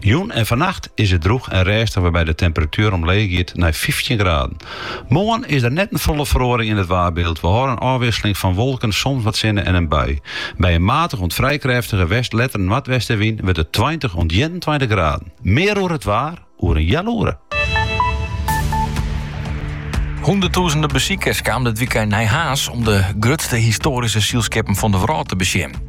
Jûn en fannacht is it drûch en rêstich wêrby't de temperatuer omleech giet nei fyftjin graden. Moarn is der net in folle feroaring yn it waarbyld. We hâlde in ôfwisseling fan wolken, soms wat sinne en in bui. By in matige oant frij krêftige west letter noardwestewyn wurdt it tweintich oant ienentweintich graden. Mear oer it waar oer in heal oere. Hûnderttûzenen besikers kamen dit wykein nei Harns om de grutste histoaryske sylskippen fan de wrâld te besjen.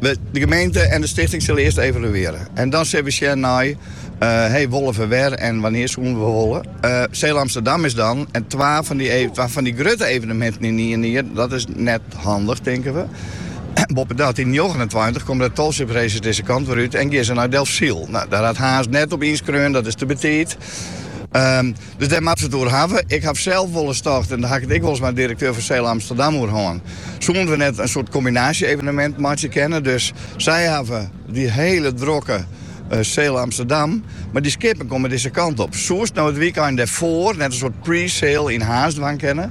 De gemeente en de stichting sille earst evaluearje en dan sille we sjen nei hee, wolle we wer en wannear soenen we wolle. Uh, Sail Amsterdam is dan en twa fan dy, e-, twa fan dy grutte eveneminten yn ien jier, dat is net handich, tinke we. Boppedat, yn njoggenentweintich komme de Tall Ships Races dizze kant wer út en geane se nei Delfsyl. No, dêr hat Harns net op ynskreaun, dat is te betiid. Um, Dus dêr moatte se it oer hawwe. Ik haw sels wolris tocht, en dêr haw ik it ek wolris mei de direkteur fan Sail Amsterdam oer hân, soenen we net in soart kombinaasje-evenemint meitsje kinne. Dus sy hawwe dy hiele drokke Sail Amsterdam, mar dy skippen komme dizze kant op. Soest no it wykein dêrfoar net in soart pre-sail yn Harns dwaan kinne,